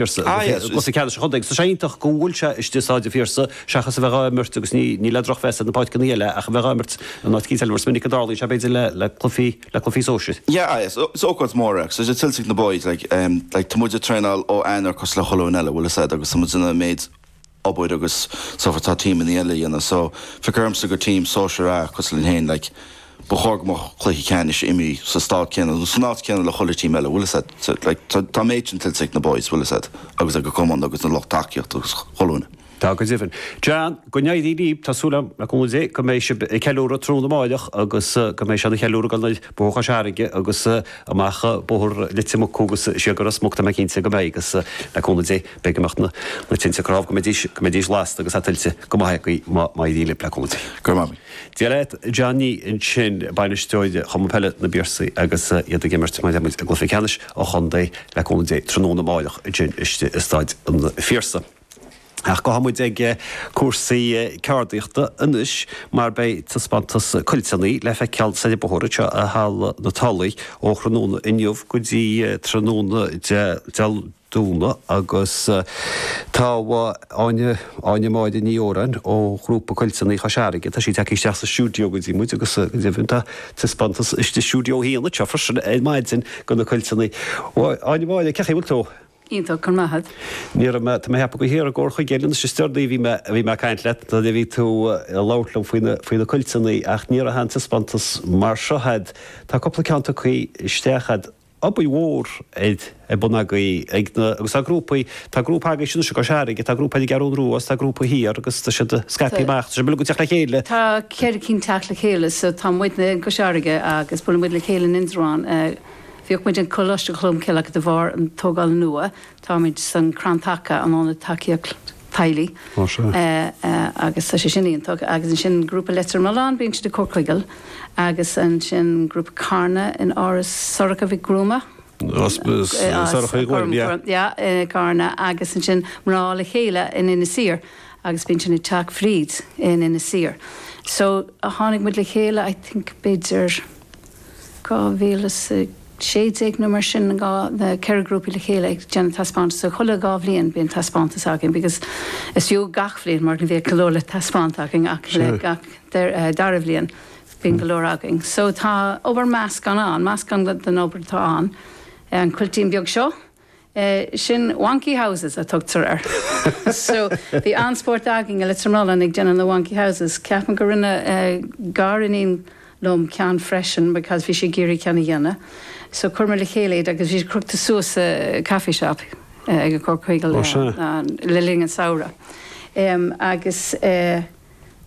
Piarsaigh, Ah yes, agus ceannais an chontae. So sé iontach go bhfuil sé istigh i Staid an Phiarsaigh seachas a bheith dhá imirt agus ní ní le drochmheas ar na páirceannaí eile ach a bheith dhá imirt in áit eicínt eile mar is minic a dtarlaíonn sé b'fhéidir le le cluichí le cluichí sóisir. Yeah, ah yes, so is ócáid mór é ach so tá sé tuillte ag na boys like em like tá muid ag traenáil ó Eanáir cosúil le chuile dhuine eile bhfuil fhios a'd agus tá muid an méid obair agus so forth atá tímeannaí eile a dhéanamh so feictear dhomsa gur tím sóisir A cosúil linn féin like ba chóir go mbeadh cluiche ceannais imrithe sa staid céanna nó san áit céanna le chuile tím eile bhfuil fhios a'd so like tá tá an méid sin tuillte ag na boys bhfuil fhios a'd agus ag an cumann agus na lucht tacaíochta agus chuile dhuine. Tá go deimhin. John, go n-éirí libh, tá súil agam, le cúnamh Dé, go mbeidh sibh ag ceiliúradh tráthnóna amáireach agus go mbeidh sibh ag ceiliúradh gan mhoill, Bóthar Chois Fharraige agus amach Bóthar Leitir Mucú agus siar go Ros Muc tá mé cinnte go mbeidh agus le cúnamh Dé. Beidh imeacht na tinte cnámh go mbeidís go mbeidís lasta agus é tuillte go maith agaí má má éiríonn libh le cúnamh Dé. Go raibh maith agaí. Dia leat John Nee ansin, bainisteoir Chumann Peile na bPiarsaigh agus iad ag imirt mar a dúirt muid i gCluiche Ceannais an Chontae le cúnamh Dé tráthnóna amáireach ansin istigh i Staid an Phiarsaigh. Ach gabhfaidh muid ag cúrsaí ceardaíochta anois mar beidh taispeántas cuilteannaí le feiceáil soir an bóthar anseo i Halla na Tulaigh ó thráthnóna inniu go dtí tráthnóna Dé Domhnaigh agus tá Áine, Áine Máire Ní Odhráin ó ghrúpa Cuilteannaí Chois Fharraige, tá sí ag teacht isteach sa stiúideo go dtí muid agus go deimhin tá taispeántas i stiúideo a haon anseo freisin ar maidin de na cuilteannaí. Áine Máire, cé chaoi a bhfuil tú? Iontach, go raibh maith 'ad. Ní raibh mé, tá mé ag ceapadh gur thiar i gComhar Chuigéal an uair is deireanaí a bhí mé, a bhí mé ag caint leat nuair a bhí tú ag labhairt liom faoi na, faoi na cuilteannaí ach ní raibh aon taispeántas mar seo 'ad. Tá cúpla ceann tugtha isteach 'ad. obair mhór ar bun agaí ag na, agus tá grúpaí, tá grúpa agaí anois i gCois Fharraige, tá grúpa eile i gCeathrú Rua, tá grúpa thiar agus tá siad scaipthe amach, tá sibh uilig ag teacht le chéile. Tá ceithre cinn ag teacht le chéile so tá muidne i gCois Fharraige agus buaileann muid le chéile in Indreabhán, bhíodh muid in Coláiste Cholm Cille ach de bharr an tógáil nua táimid san Crann Taca, an ionad tacaíochta. teaghlaigh. Tá sé. Agus tá sé sin iontach. Agus ansin grúpa Leitir Mealláin, bíonn siad ag Comhar Chuigéal. Agus ansin grúpa Carna in Áras Shorcha Ní Ghuairim. Sorcha Ní Ghuairim, yeah. Yeah, i gCarna. Agus ansin Mná le Chéile in Inis Oírr. Agus bíonn sin ag Teach Bhríd in Inis Oírr. So tháinig muid le chéile I think b'fhéidir 2016 nó mar sin, na ceithre grúpaí le chéile ag déanamh taispeántas. So chuile dhá bhliain bíonn taispeántas againn because is fiú gach bliain mar ní bhíodh go leor le taispeáint againn ach le gach dara bhliain bíonn go leor againn. So tá obair meascán ann, meascán den obair atá ann, an cuiltín beag seo, Sin wonky houses a tugtar air. So, bhí an-spórt againn i Leitir Mealláin ag déanamh na wonky houses. Ceapaim gur rinne gariníon liom ceann freisin because bhí sí ag iarraidh ceann a dhéanamh. So, chuireamar le chéile iad agus bhí siad crochta suas sa coffee shop ag an gcomharchumann Ó sea. le linn an tsamhraidh. Em, agus eh,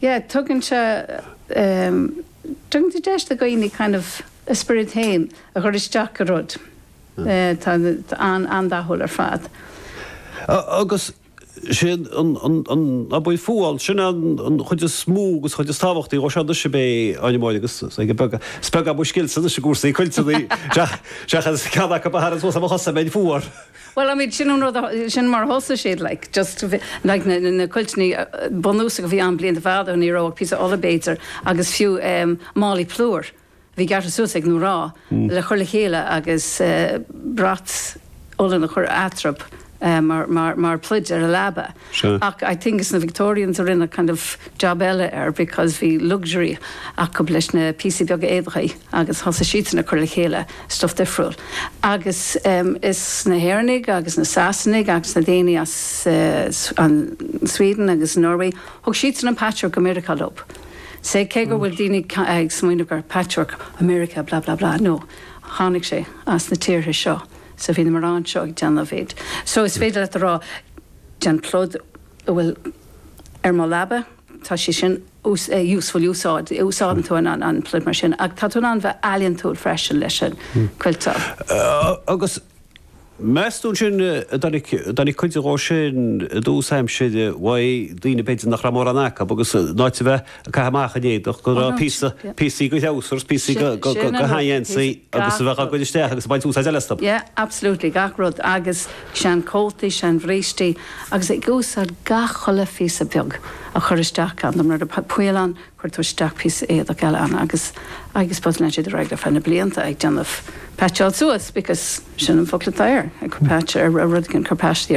yeah, tugann sé em, tugann sé deis do dhaoine kind of a spiorad féin a chur isteach i rud. Tá sé an-dathúil ar fad. Agus sé an fuáil, sin é an chuid is mó agus an chuid is tábhachtaí dhó seo anois, ab ea, a Áine Mháire, agus beag beag is beag mo scils-se anois i gcúrsaí cuilteanna, seachas ceann acu ba theann suas ar mo chosa má bhím fuar. Bhuel, I mean, sin an rud, sin mar a thosaigh siad, like, just, like, na cuilteanna bunúsacha a bhí ann blianta fadó, ní raibh ach píosa olla, b'fhéidir, agus fiú málaí plúir. bhí gearrtha suas ag na mná le cur le chéile agus brat olla a chur eatarthub mar pluid ar an leaba ach I think is na Victorians a rinne kind of job eile air because bhí luxury acu leis na píosaí beaga éadaigh agus thosaigh siadsan ag cur le chéile stuff difriúil agus em is na hÉireannaigh agus na Sasanaigh agus na daoine as an Sweden agus Norway thug siadsan an patchwork go Meiriceá leo. Sea, cé go bhfuil daoine ag smaoineamh gur patchwork America blah blah blah nó tháinig sé as na tíortha seo so bhí na mná seo ag déanamh iad so is féidir leat a rá den phluid atá ar mo leaba tá sé sin useful úsáid úsáideann tú an pluid mar sin ach tá tú in ann bheith ealaíontúil freisin leis an gcuilteáil. Agus Meas tú ansin, a dtáinig cuid dhó sin i dtús aimsire ó daoine b'fhéidir nach raibh mórán acu, agus in áit a bheith ag caitheamh amach an éadach, go raibh píosa, píosaí de threabhsars, píosaí de sheangheansaí agus a bheadh á gcur isteach agus ag baint úsáid eile astu. Yeah, absolutely, gach rud, agus seanchótaí, seanbhrístí, agus ag úsáid gach chuile phíosa beag a chur isteach ann, nuair a bhí poill ann, Chuir tú isteach píosa éadach eile ann agus I guess just lean sé ar aghaidh ar feadh na blianta ag déanamh patcháil suas because sin an focal atá air, ag cur patch ar rud éigin, cur paistí ar